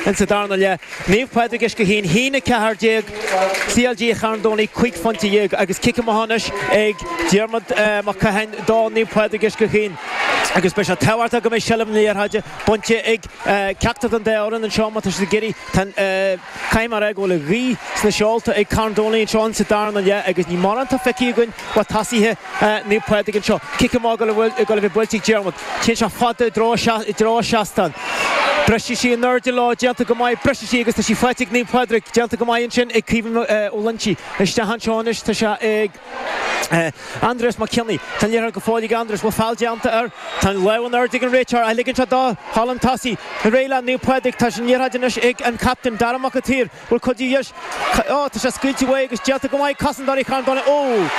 In sa darna leith, Naomh Pádraig Uisce Chaoin a haon 14, CLG Charn Domhnaigh 15 phointe agus cic amach anois ag Diarmaid Mac Catháin do Naomh Pádraig Uisce Chaoin agus beidh sé tábhachtach go mbeidh seilbh na liathróide bainte ag ceachtar den dá fhoireann anseo má tá siad ag iarraidh. Tá caithfidh mé a rá go bhfuil an ghaoth sna seolta ag Carn Domhnaigh anseo in sa darna leath agus ní mórán atá feicthe againn ó thosaithe Naomh Pádraig anseo. Cic amach ag dul a bheith buailte ag Diarmuid. Téann sé fada i dtreo an seastán. Briseann sí in airde leo. Déanta go maith. Briseann sí agus tá sí faighte ag Naomh Pádraig. Déanta go maith ansin ag Caoimhín Ó Loinsigh. Isteach anseo anois tá sé ag Aindrias Mac Cionnaith. Tá an liathróid go fóill ag Aindrias. Bhfuil feall déanta air? Tá an lámh in airde ag an réiteoir. Ach ligeann sé dó ghabháil chun tosaigh. Ar aghaidh le Naomh Pádraig. Tá an liathróid anois ag an captaen Dara Mac an tSaoir. Bhuel, cad é dheis? Ó, tá sé scaoilte uaidh agus déanta go maith. Casann Daithí Sheáin Bháin amach.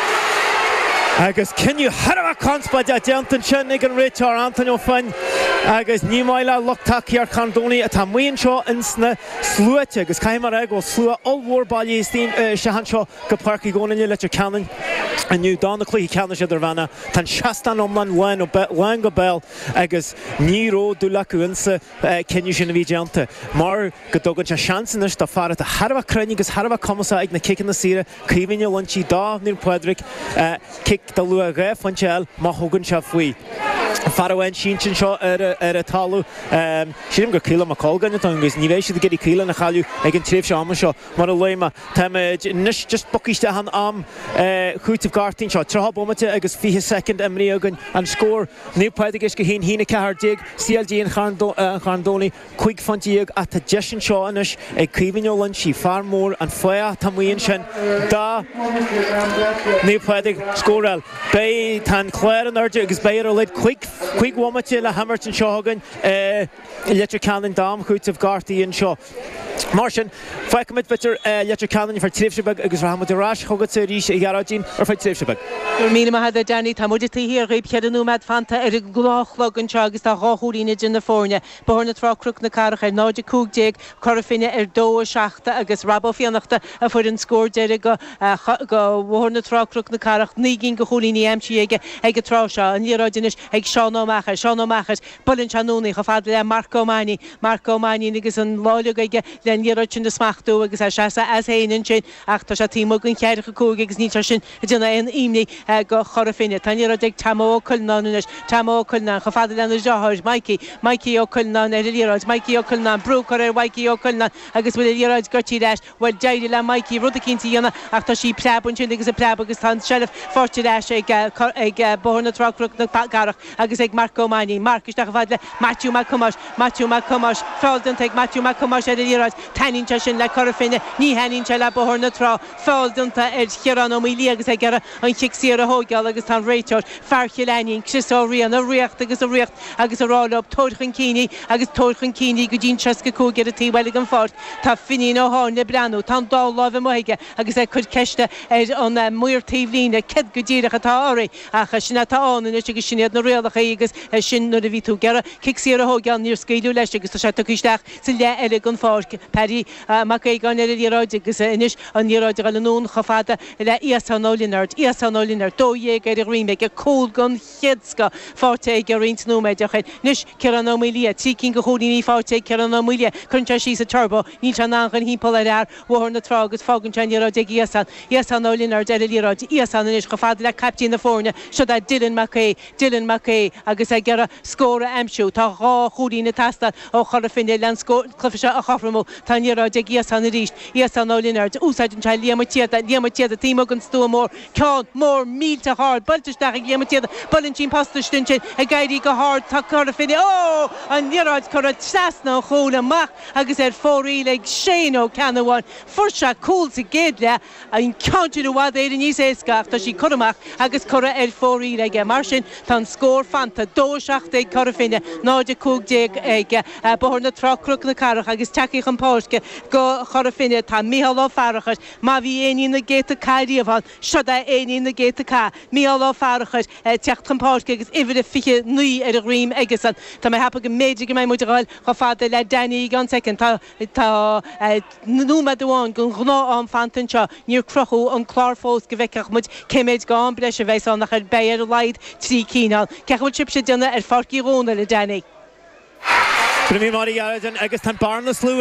Agus cinneadh thar a bheith conspóideach déanta ansin ag an réiteoir, Antaine Ó Floinn, agus ní maith le lucht tacaíocht Charn Domhnaigh atá amuigh anseo ins na sluaite. Agus caithfidh mé a rá go bhfuil slua ollmhór bailithe isteach anseo go Páirc Uí Dhónaill i Leitir Ceanainn inniu do na cluichí ceannais idirmheánacha. Tá an seastán iomlán lán chóir a bheith lán go béal agus ní raibh dúil acu insa. cinneadh sin a bhí déanta mar go dtugann sé seans anois d'fhear atá thar a bheith cruinn agus thar a bheith cumasach ag na ciceanna saora cúilín a bhaint do Naomh Pádraig cic de luach dhá phointe é má thugann sé faoi fear amháin sínte anseo ar an talamh. Sílim gur Caolán Mac Colgáin atá ann agus ní bheidh siad ag iarraidh Caolán a chailleadh ag an tréimhse ama seo mar a luaigh mé. Táimid anois just bacaois de an am cúitimh gortaithe anseo. Tríocha bomaite agus 20 soicind imithe againn. An scór, Naomh Pádraig Uisce Chaoin a haon 14. CLG Charn Domhnaigh, cúig phointe dhéag ach tá deis anseo anois ag Caoimhín Ó Loinsigh, fear mór an fathach atá amuigh ansin do Naomh Pádraig scóráil. Beidh, tá an clár in airde agus beidh ar a laghad cúig bhomaite le himirt anseo chugainn i Leitir Ceanainn d'am cúitimh gortaithe anseo. Mar sin, fágfaimid Leitir Leitir Ceanainn ar feadh tréimhse beag agus rachaimid ar ais chugatsa arís, a Ghearóidín, ar feadh tréimhse beag. Go raibh míle maith agat, Danny. Tá muid taobh thiar dhaoibh cheithre nóimeád fanta ar an gnáthchlog anseo agus tá dhá chúilín idir na foirne, Bóthar na Trá Cnoc na Cathrach ar 0:15, Cora Finne ar 2:07 agus Rob Ó Fiannachta a fuair an scór deiridh go Bhóthar na Trá Cnoc na Cathrach, naoi gcinn de chúilíní aimsithe aige ag an tráth seo. An liathróid anois ag Seán Ó Meachair. Seán Ó Meachair. Buaileann sé anonn í chomh fada le Marc Ó Mainnín, Marc Ó Mainnín agus an lá uilig aige le an liathróid sin a smachtú agus é ina sheasamh as féin annsin ach tá sé taobh amuigh den cheathracha cúig agus níl sé sin ag déanamh aon imní go Chora Finne. Tá an liathróid ag Tomo Ó Cuileanáin anois, Tomo Ó Cuileanáin chomh fada lena dhriotháir, Maidhcí, Maidhcí Ó Cuileanáin ar an liathróid, Maidhcí Ó Cuileanáin, brú á chur ar Mhaidhcí Ó Cuileanáin agus bhuail an liathróid goití leis. Bhuel, d'éirigh le Mikey rud eicínt a dhéanamh ach tá sí ag preabadh ansin agus ag preabadh agus tá an tseilbh faighte ar ais ag ag Bóthar na Trá-Cnoc na Cathrach agus ag Marc Ó Mainnín. Marc, isteach chomh fada le Maitiú Mac Thomáis. Maitiú Mac Thomáis, feall déanta ag Maitiú Mac Thomáis ar an liathróid. Taitníonn sé sin le Cora Finne, ní thaitníonn sé le Bóthar na Trá. Feall déanta ar Chiarán Ó Maolaodha agus é ag iarraidh an chic saor a thóigeáil agus tá an réiteoir, fear Chill Ainnín, Chris Ó Riain, ag ritheacht agus ag ritheacht agus ag rá leo, tabhair chun cinn í agus tabhair chun cinn í go dtí an 65 ar an taobh eile den pháirc. Tá Finín Ó hÁinle ag breathnú. Tá an dá láimh amuigh aige agus é ag cur ceiste ar an maor taobh líne, Céard go díreach atá oraibh? Ach sin é atá ann anois agus sin iad na rialachaí agus sin nuair a bhí tú ag iarraidh cic saor a thóigeáil níor scaoileadh leis agus tá sé tugtha isteach sa leath eile den pháirc. Paddy Mac Aogáin ar an liathróid agus anois an liathróid ag goil anonn chomh fada le Iasón Ó Lionáird. Iasón Ó Lionáird, dó dhéag ar a dhroim aige, cúl den chéad scoth, faighte aige roinnt nóiméid ó shin. Anois, Ciarán Ó Maolaodha, trí cinn de chúilíní faighte ag Ciarán Ó Maolaodha. Cuireann sé síos an turbo, níl sé in ann dul thimpeall ar fhear Bhóthar na Trá agus fágann sé an liathróid ag Iasán. Iasán Ó Lionáird ar an liathróid. Iasán anois chomh fada le caiptín na foirne, seod é Dylan Mac Aoidh. Dylan Mac Aoidh agus é ag iarraidh scór a aimsiú. Tá dhá chúilín ag teastáil ó Chora Finne leis an gcluife seo a chothromú. Tá an liathróid ag Iasán arís. Iasán Ó Lionáird, úsáideann sé Liam Ó Síoda. Liam Ó Síoda, taobh amuigh den stua mór. ceann mór millteach ard, buailte isteach ag Liam Ó Síoda, buaileann sí an posta istigh ansin, ag éirí go hard, tá Cora Finne, ó! an liathróid curtha trasna an chúil amach agus ar fóraoil ag Shane Ó Ceannabháin. Fuair sé cúl sa gcéad leath, an ceann sin i bhfad Éireann níos éasca ach tá sí curtha amach agus curtha ar fóraoil aige. Mar sin tá an scór fanta, dó, a seacht ag Cora Finne, náid a cúig déag ag Bóthar na Trá-Cnoc na Cathrach agus tagthaí chun páirce do Chora Finne tá Mícheál Ó Fearachair, Má bhí éinín na gcéadta cath riamh ann, seod é éinín na gcéadta cath. Mícheál Ó Fearachair ag teacht chun páirce agus uimhir a 29 ar a dhroim aige-san. Tá mé ag ceapadh go mb'fhéidir go mbeidh muid ag dhul chomh fada le Danny i gceann soicind. Tá tá nóiméad amháin den ghnáth-am fanta anseo. Níor crochadh an clár fós go bhfeicfeadh muid cé méid d'am breise a bheidh ann ach ar beidh ar a laghad trí cinn ann. Cén chaoi a bhfuil sibhse ag déanamh ar Pháirc Uí Dhónaill, a Danny? Bhí mé mar gheall ar sin agus tá an bearna slua.